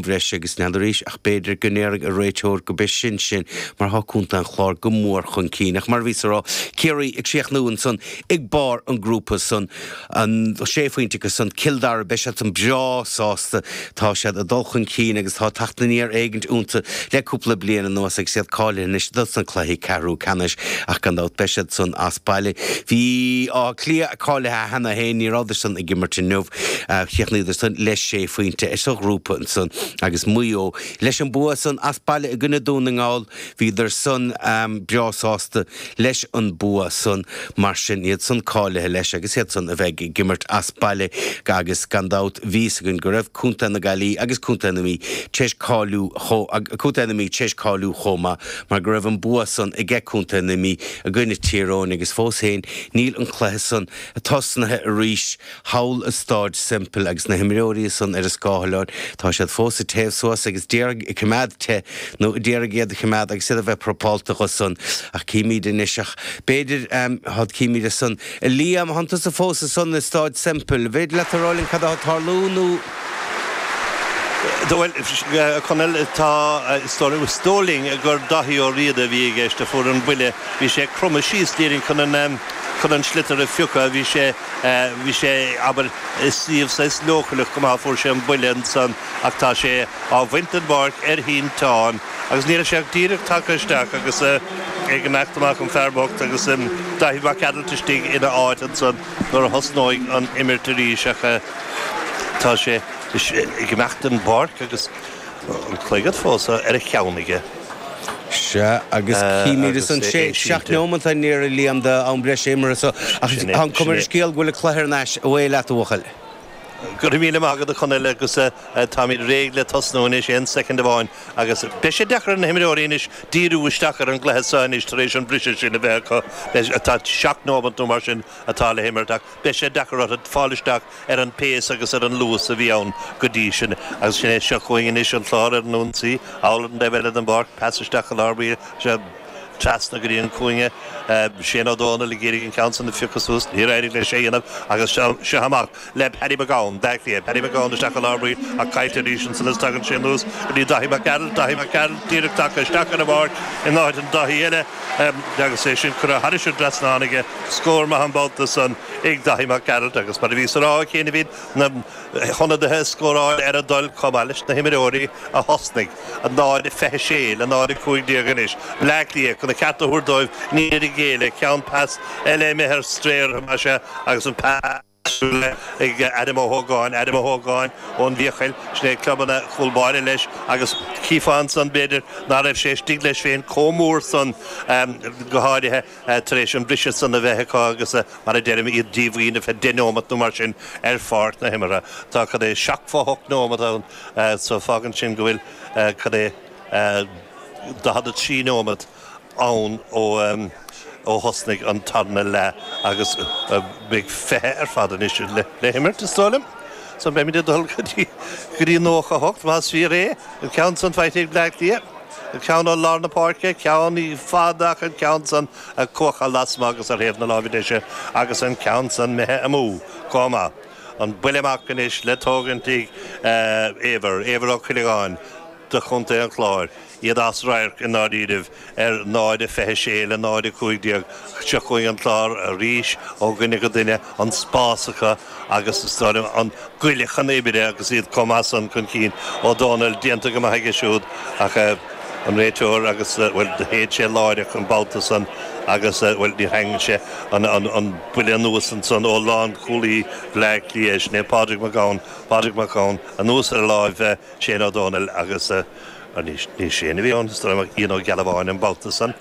bhreise agus Niall arís, ach b'fhéidir go ndéarfadh an réiteoir go b'in sin mar thá Contae an Chláir go mór chun cinn. Ach mar a bhíos ag rá, Ciarraí ag críochnú ansan ag barr an grúpa san, an sé phointe acu san, Cill Dara, beidh siad san breá sásta, tá siad ag dul chun cinn agus tá teacht aniar éigint iontu le cúpla bliain anuas agus iad cáilithe anois dos na cluichí ceathrú ceannais. Ach gan dabht beidh siad san as baile. Bleá Cliath. cáilithe cheana féin, ní rabhadar-san ag imirt inniu, chríochnaíodarsan le sé phointe sa ghrúpa ansan agus Maigh Eo leis an bua san as baile i gcoinne Dún na nGall, bhíodarsan breá sásta leis an bua san. Mar sin, iad san cáilithe leis agus iad san a bheidh ag imirt as baile agus gan dabht bhí fhios againn go raibh Contae na Gaillimhe agus Contae na Mí tar éis cáiliú chomh Contae na Mí tar éis cáiliú chomh maith mar go raibh an bua san age Contae na Mí i gcoinne Tír Eoghain agus fós féin Níl an cluiche san tosnaithe arís. Thall i Stáid Semple agus na himreoirí san ar a scáthláin, tá siad fós ag téamh suas agus ag d'iarraidh coimeád te nó ag d'iarraidh iad a choimeád agus iad ag bheith preapálta dho san. Ach címid anois, ach b'fhéidir, cad címid as san? A Liam, thá tusa fós ansan i Stáid Semple. An féidir leat a rá linn cad athá ag tarlú nó. Bhuel, a Chonaill, tá, is dóigh liom, is dóigh linn gur Daithí Ó Riada a bhí i gceist a fuair an buille. Bhí sé ag cromadh síos ag d'iarraidh chun an, chun an sliotar a phiocadh. Bhí sé, bhí sé, abair, i suíomh saghas leochaileach go maith a fuair sé an buille ansan ach tá sé á bhaint den bpáirc ar shínteán agus níl sé ach díreach tagtha isteach agus ag imeacht amach, an fear bocht, agus Daithí Mac Gearailt istigh ina áit ansan nuair a thosnóidh an imirt arís ach. Tá sé ag imeacht den bpáirc agus an clogad fós ar a cheann aige. Sea, agus címidis an sé, seacht neomanta ann, a Liam, de am breise imeartha so, ach táim chun dul ar an scéal go bhfuil an cluiche thar n-ais. Away leat, a bhuachaill! Go raibh míle maith agat, a Chonaill, agus táimid réidh le tosnú anois. Aon soicind amháin, agus beidh sé deacair ar na himreoirí anois díriú isteach ar an gcluiche so anois tar éis an briseadh sin a bheith acu. Seacht neomat nó mar sin atá le himirt, ach. beidh sé deacair orthu fáil isteach ar an pace agus ar an luas a bhí ann go dtí sin agus sin é seo chugainn anois an Clár ar an ionsaí, thall ar an dtaobh eile den bpáirc, pas isteach go lár báire seo trasna go dtí an cúinne, Shane Ó Domhnaill ag iarraidh an ceann san a phiocadh suas, níor éirigh leis é a dhéanamh agus seo amach le Paddy McGowan, Baile Átha Cliath, Paddy McGowan isteach go lár báire ach caillte arís ansan is tagann sé anuas go dtí Daithí Mac Gearailt, Daithí Mac Gearailt díreach tagtha isteach ar an bpáirc in áit an Dáithí eile. Agus é sin curtha thar an dtrasnán aige, scór maith an babhta san ag Daithí Mac Gearailt agus mar a bhíos á rá ó chianaibh, bhí na hionadaithe ag scóráil ar a dtoil chomh maith leis na himreoirí a thosnaigh. 0:26 le 0:15 anois. Bleá Cliath chun a cheart a thabhairt dóibh, níor ghéilleadar, ceann pas eile imithe ar strae orthu mar sin agus an Súil ag Adam Ó hÓgáin, Adam Ó hÓgáin ón bhFiacail, sin é club an chúl báire leis agus chífeá ansan b'fhéidir ná raibh sé istigh leis féin comh mór san, go háirithe tar éis an briseadh san a bheith acu agus mar a deirim iad díomhaoin ar feadh deich neomat nó mar sin ar pháirc na himeartha. Tá cad é seachtó a hocht neomat ann so fágann sin go bhfuil cad é 43 neomat. ann ó thosnaigh an tarna leath agus beidh fiche ar fad anois le himirt, is dóigh liom, so beimid ag dul go dtí nócha a hocht más fíor é, an ceann san faighte ag Bleá Cliath, an ceann ó lár na páirce, ceann i bhfad ach an ceann san ag cuachadh lasmuigh agus ar thaobh na láimhe deise agus an ceann san imithe amú chomh maith. An buille amach anois le tógaint ag Éibhear, Éibhear Ó Cuilleagáin do chontae an Chláir. iad as radharc i ndáiríribh, ar 00:26 le 00:15 seo chugainn an Clár arís ó dhuine go duine, an spás acu agus is dóigh liom an goile chun oibre agus iad comh maith san chun cinn. Ó Dónaill, Déanta go maith aige siúd ach an réiteoir agus, bhuel, shéid sé láireach an babhta san agus, bhuel, níor sheinn sé an buille anuas ansan. Ó lánchúlaí Bhleá Cliath, sin é Pádraig Mac Gabhann, Pádraig Mac Gabhann anuas ar láimh Shane Ó Dónaill agus. Ní Shane a bhí ann is dóigh liom ach Ian Ó Gealbháin an babhta san.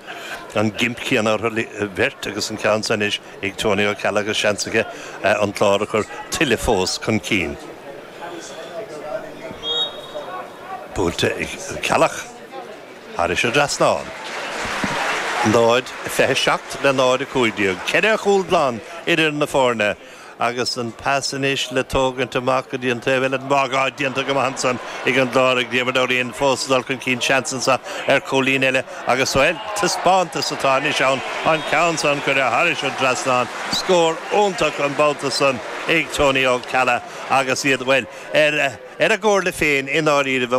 An gimp céanna orthu bheirt agus an ceann san anois ag Tony Ó Ceallaigh agus seans aige an Clár a chur tuilleadh fós chun cinn. Buailte ag Ceallach thairis an trasnán. 0, 27 le 0, 15. Ceithre chúl glan idir na foirne agus an pas anois le tógaint amach go dtí an taobh eile den mharc. Á, déanta go maith ansan ag an gClár, ag Diarmuid Ó Riain fós ag dul chun cinn. Seans anso ar chúilín eile agus, bhuel, taispeántas atá anois ann. An ceann san curtha thairis an trasnán, scór iontach an babhta san ag Tony Ó Ceallaigh agus iad, bhuel, ar a gcomhairle féin i ndáiríribh.